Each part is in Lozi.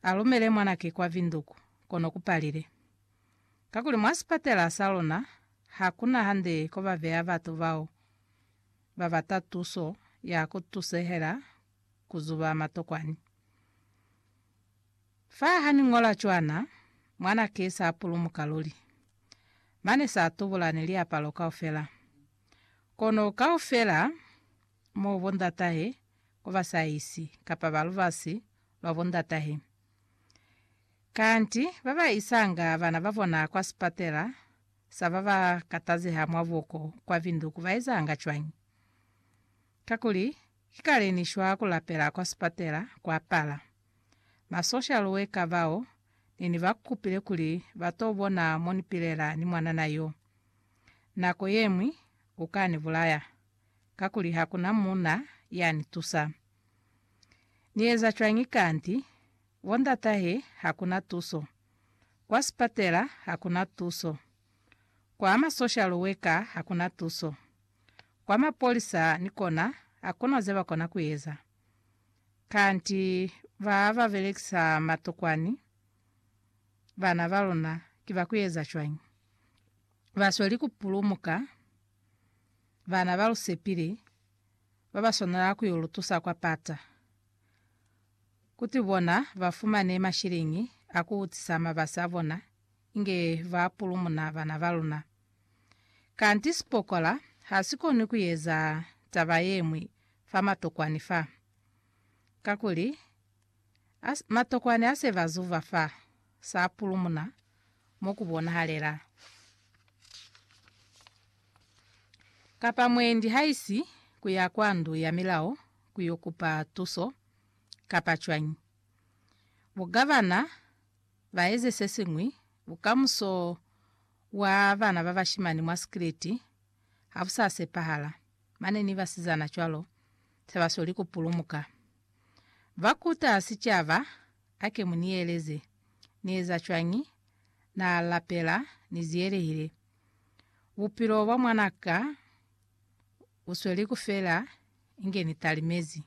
alumele mwanake kwa vinduku, kono kupalile. Kakuli mwa sipatela sa luna, hakuna hande kobabeya batu bao babata tuso ya kutusehela kuzuba matokwani. Fa haniñola cwana, mwanake sapulumuka luli. Mane satubula ni liapalo kaufela. Kono kaufela Mo bondatahe ku ba saisi, kapa ba lubasi lwa bondatahe. Kanti ba ba isanga bana ba bona kwa sipatela sa ba ba katazeha mwa buko kwa Vinduku ba ezanga cwañi? Kakuli, ki kale ni shwa ku lapela kwa sipatela kwa pala. Ma social worker bao ne ni ba kupile kuli ba to bona mo ni pilela ni mwanana yo. Nako ye ñwi u ka ni bulaya. kakuli ha ku na muuna ya ni tusa. Ni eza cwañi kanti bo ndatahe ha ku na tuso, kwa sipatela ha ku na tuso, kwa ma social worker ha ku na tuso, kwa mapolisa ni kona ha ku na ze ba kona ku eza? Kanti ba ba belekisa matokwani bana ba luna ki ba ku eza cwañi? Ba sweli ku pulumuka. bana ba lu sepile ba ba swanela ku yo lu tusa kwa pata, kuti bona ba fumane mashiliñi a ku utisa mabasi a bona inge ba pulumuna bana ba luna. Kanti sipokola ha si koni ku eza taba ye ñwi fa matokwani fa, kakuli, As, matokwani ase ba zuva fa sa pulumuna mo ku bonahalela. Kapa mwendi haisi ku ya kwa ndu ya milao ku yo kupa tuso, kapa cwañi? Bugavana ba eze se siñwi, bukamuso bwa bana ba bashimani mwa sikiliti ha bu sa sepahala, mane ni basizana cwalo se ba sweli ku pulumuka. Ba kuta sicaba, Ake mu ni eleze. Ni eza cwañi? Na lapela, Ni ziyelehile. Bupilo bwa mwana ka bu sweli ku fela inge ni talimezi.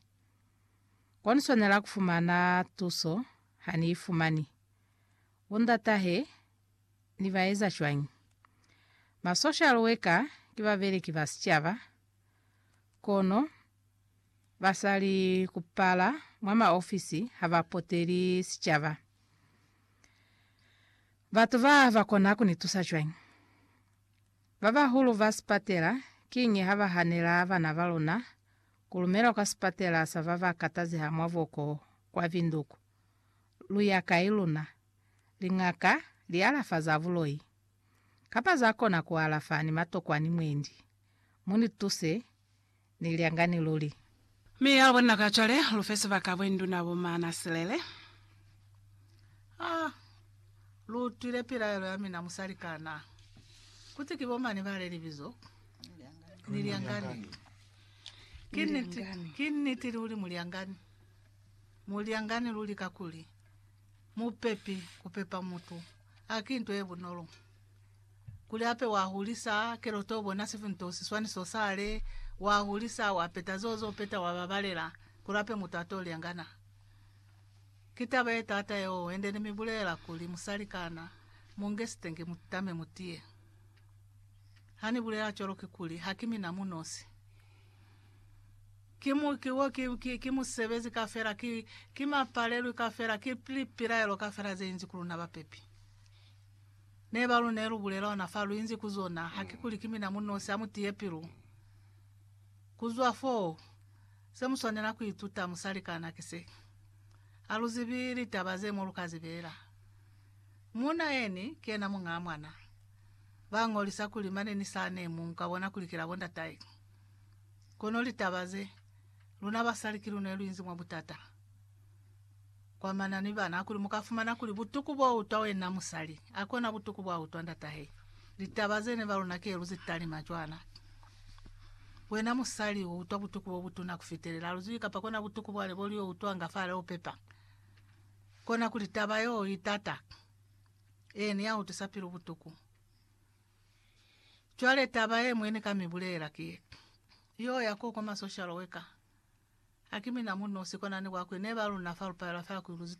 Kwa ni swanela ku fumana tuso, ha ni i fumani. Bo ndatahe ni ba eza cwañi? Ma social worker ki babeleki ba sicaba, kono basali kupala mwa maofisi ha ba poteli sicaba. Batu ba ba kona ku ni tusa cwañi? Ba bahulu ba sipatela kiñi ha ba hanela bana ba luna ku lumelwa kwa sipatela sa ba ba katazeha mwa boko kwa Binduku? Lu ya kai luna? Liñaka li alafa za buloi kapa za kona ku alafa ni matokwa ni mwendi. Mu ni tuse ni lyangani luli. Mi ya lubona ka cwale, lu fe sibaka bwenduna bo maana silele. Ha lu utwile pilaelo ya mina musali kana kuti ki bomani ba le libizo ni lyangani. Ki niti, ki niti luli, mulyangani, mulyangani luli kakuli. Mupepi kupepa mutu haki nto yebunolo. Kuli hape wahulisa keloto ubona sifi nto siswaniso sale, wahulisa wapeta zeo zopeta wababalela kuli hape mutu ato lyangana. Ki taba yetaata yeo hende nimibulelela kuli musali kana munge sitenge mutame mutiye. Hanibulela cwalo kikuli hakimina munosi. Ki mu, ki wo, ki, ki, ki musebezi kafela, ki, ki mapalelwi kafela, ki pli, pilaelo kafela ze inzi ku luna bapepi. Ne ba lu ne lu bulela ona fa lu inzi ku zona, ha ki kuli ki mina mu nosi, ha mu tiye pilu. Ku zwa foo, se mu swanela ku ituta, musalikana, ki se. Ha lu zibi litaba ze mo lu ka zi beela. Muuna yeni, ki yena muñaa mwana. Ba ñolisa kuli mane ni sane mu, mu ka bona kuli ki la bo ndatae. Kono litaba ze, luna basali ki luna luinzi mwa butata kwa mana ni bana, kuli muka fumana kuli butuku bo utwa wena musali akona butuku bwa utwa ndatahe. Litaba zene ba luna ki eluzi talima cwana. Wena musali u utwa butuku bo butuna kufitelela luzwi kapa kona butuku bwale bo lio utwa nga fale ho pepa. Kona kuli taba yo itata, ee ni ya utwisa pilu butuku. Cwale taba ye mwe ni ka mi bulelela ki ye, Yo ya koko ma social worker. Haki mina mu nosi kona ni bwakwe ne ba luna fa lu palela fa ku Iluzito.